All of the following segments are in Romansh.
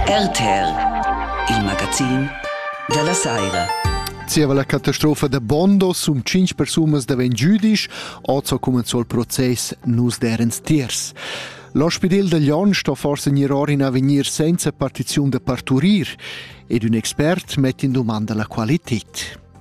RTL, il magazin da la saira. Zieva la catastrofa da Bondo sun tschinch persunas davent giüdisch, hoz ho cumenzò il process Nus derens tiers. L'ospidel da Lyon sto forse gnir or in avegnir senza partiziun da parturir ed ün expert mett in dumanda la qualität.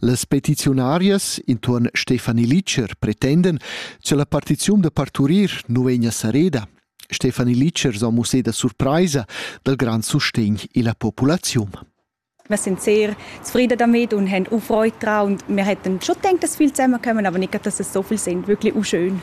Las petiziunarias intuorn Stefanie Litscher pretendan cha la partiziun da parturir nu vegna sareda. Stefanie Litscher s'ho musseda surpraisa dal grand sustegn illa populaziun. Wir sind sehr zufrieden damit und haben auch Freude daran. Und wir hätten schon gedacht, dass viele zusammenkommen, aber nicht, dass es so viele sind. Wirklich auch schön.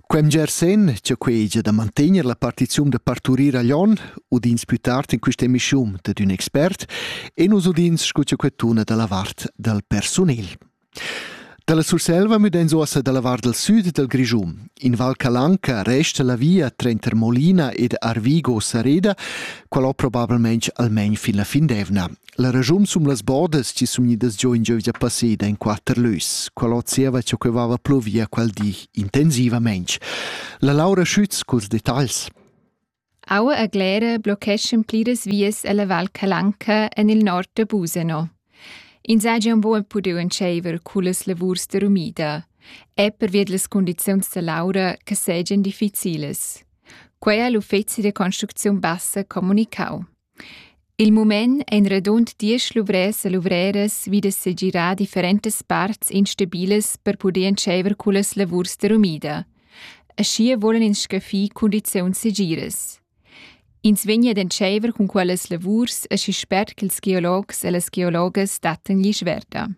Quem Gersen, cha quegia da mantegner la partizium da parturir a Lyon, udins plü tard in quista emischium dad ün expert e nus udins scu cha quettuna da la vart dal persunel. Dalla Surselva müdains uossa dalla vart dal süd dal Grischun. In Val Calanca resta la via tranter Molina ed Arvigo Sareda, qual ho probabilmente almain fin la fin d'evna. La regiun sum las bordas chi sun gnidas giò in giövgia passeda in quatter lös. Qual ho zieva cha que vaiva pluvia quel di intensivamaing. La Laura Schütz culs detagls. Aua a Glera blocheschan pliras vias alla Val Calanca en il nord de Busano. Ins ha già un buon pudiu entscheiver culas lavurs de rumida. È pervia delle condizioni da Laura che segan difficiles. Quei ha l'uffizi de construzione bassa comunicau. Il mument ein radund diesch luvrers e luvreras vidas segirar differentas parts instabilas per puder entscheiver cullas lavurs de rumida. Aschia vulan ins scaffir cundiziuns segiras. Ins vegni ad entscheiver cun quellas lavurs aschi spert ch'ils geologs e las geologas dattan glisch verda.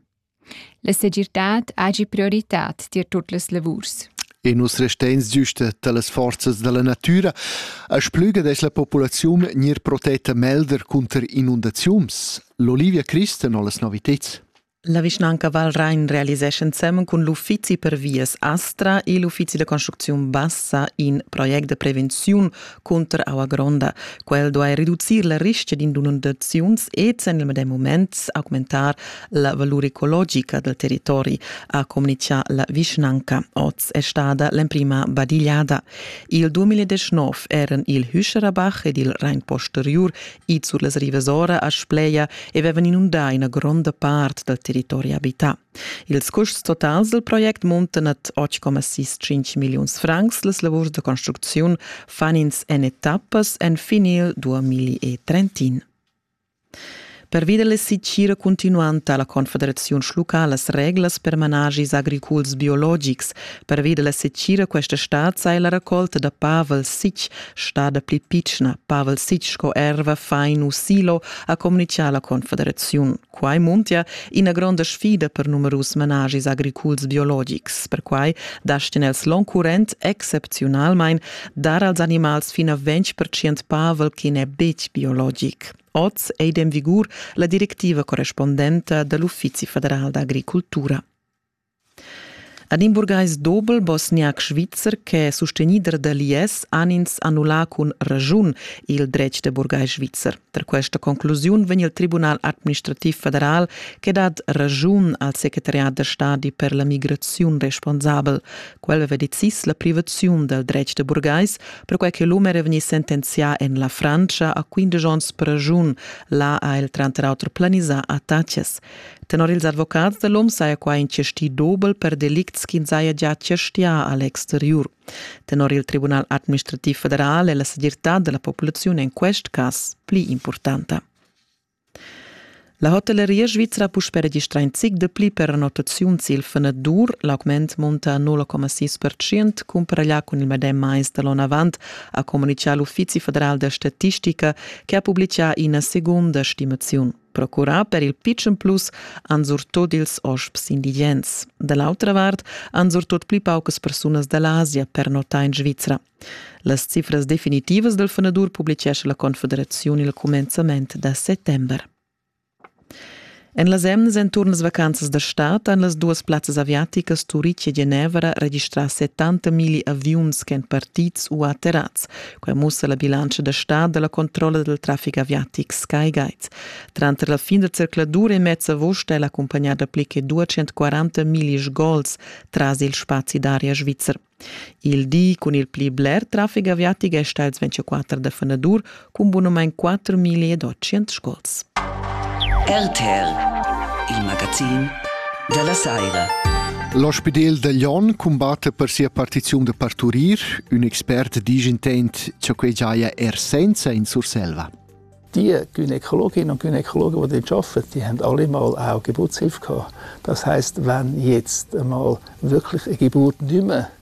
La segirtad hagi prioritad tier tut las lavurs. E nus resteins giusta dallas forzas dalla natüra, a splüga dess la populaziun gnir protetta melder cunter inundaziuns. L'Olivia Christen ho las noviteds. La vischnanca Val Rain realisescha ensemen cun l'uffizi per vias Astra e l'uffizi da construcziun bassa in project de prevenziun cunter aua gronda. Quel duai reducir la rischia d'inundaziuns ed en il medem moment augmentar la valur ecologica dal territori, ha communitgà la vischnanca. Oz è stada l'emprima badigliada. Il 2019 eran il Hüscherabach ed il Rhein posteriur ids sur las rivas ora a Spleia e avevan inundà ina gronda part dal territori abità. Ils custs totals dal project muntan ad 8,65 milliuns francs. Las lavurs da construcziun fan ins en etappas enfin il 2031. Pervi da la sitgira cuntinuanta la Confederaziun schlucca las reglas per managis agriculs biologics. Pervi da la sitgira questa stad sai la raccolta da Pavel Sich stada pli pitschna. Pavel Sich sco erva fain u silo ha communitgà la Confederaziun. Quai muntia ina gronda sfida per numerus managis agriculs biologics. Perquai dastin els l'oncurrent excepziunalmain dar als animals fin a 20% pavel che n'è betg biologic. Oz è in vigur la directiva correspondenta da l'Uffizi federal d'agricultura. Ed in burgais dobel bosniac svizzer ch'è sustegnider da l'IS han ins annullà cun raschun il dretg da burgais svizzer. Tar questa conclusiun vegn il Tribunal administrativ federal che dat raschun al secretariat da stadi per la migraziun responsabel. Quel aveva decis la privaziun dal dretg da burgais, perquai che l'um era vegnì sentenzià en la Frantscha a 15 onns per raschun. Là ha el tranter auter planisà attacas. Tenor ils advocats da l'OM saja quai in chasti dobel per delicts ch'ins haja gia chastià a l'exteriur. Tenor il Tribunal administrativ federal è la segirtad da la populaziun en quest cas pli impurtanta. La hotelleria svizra ha puspè registrà in zic de pli pernottaziuns il fenadur. L'augment munta 0,6% cumparaglià cun il medem mais da l'onn avant, ha communitgà l'Uffizi federal da statistica che ha publitgà ina segunda stimaziun. Procurà per il pitschen plus han surtut ils hosps indigens. Da l'autra vart han surtut pli paucas persunas da l'Asia pernottà in Svizra. Las cifras definitivas del fenadur publicescha la Confederaziun il cumenzament da settembre. En las emnas enturn las vacanzas da stad han las duas plazzas aviaticas Turic e Genevra registrà 70 milli aviuns ch'èn partids u atterrats, Quai mussa la bilantscha da stad da la controlla dal traffic aviatic SkyGuide. Tranter la fin da zercladur e mez avust è l'accumpagnada pli che 240 millish gols tras il spazi d'aria svizzer. Il di cun il pli bler traffic aviatic è stà ils 24 da fanadur cun bunumain 4.800 sgols. RTL, il magazin dalla saira. L'ospidel da Glion cumbatte per sia partiziun da parturir. Un expert dice intent ciò che giaia er senza in Surselva. Die Gynäkologinnen und Gynäkologen, die dort arbeiten, die haben alle mal auch Geburtshilfe gehabt. Das heißt, wenn jetzt einmal wirklich eine Geburt nicht mehr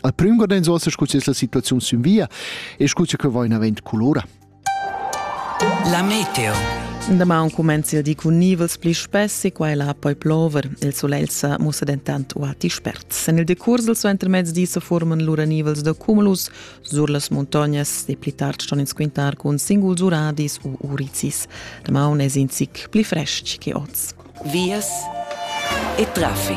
Al prüm guardans uossa scu es la situaziun sün via e scu che va in avant culora. La meteo. Damaun comenzi il di cun nivels pli spessi, qua la poi plover. Il solegl sa mussa dentant uati spert. En il decurs del suo intermezzi se forman lura nivels da cumulus sur las montagnas e pli tard ston ins quintar cun singuls uradis u uricis. Damaun es in zic pli frestg che oz. Vias e traffic.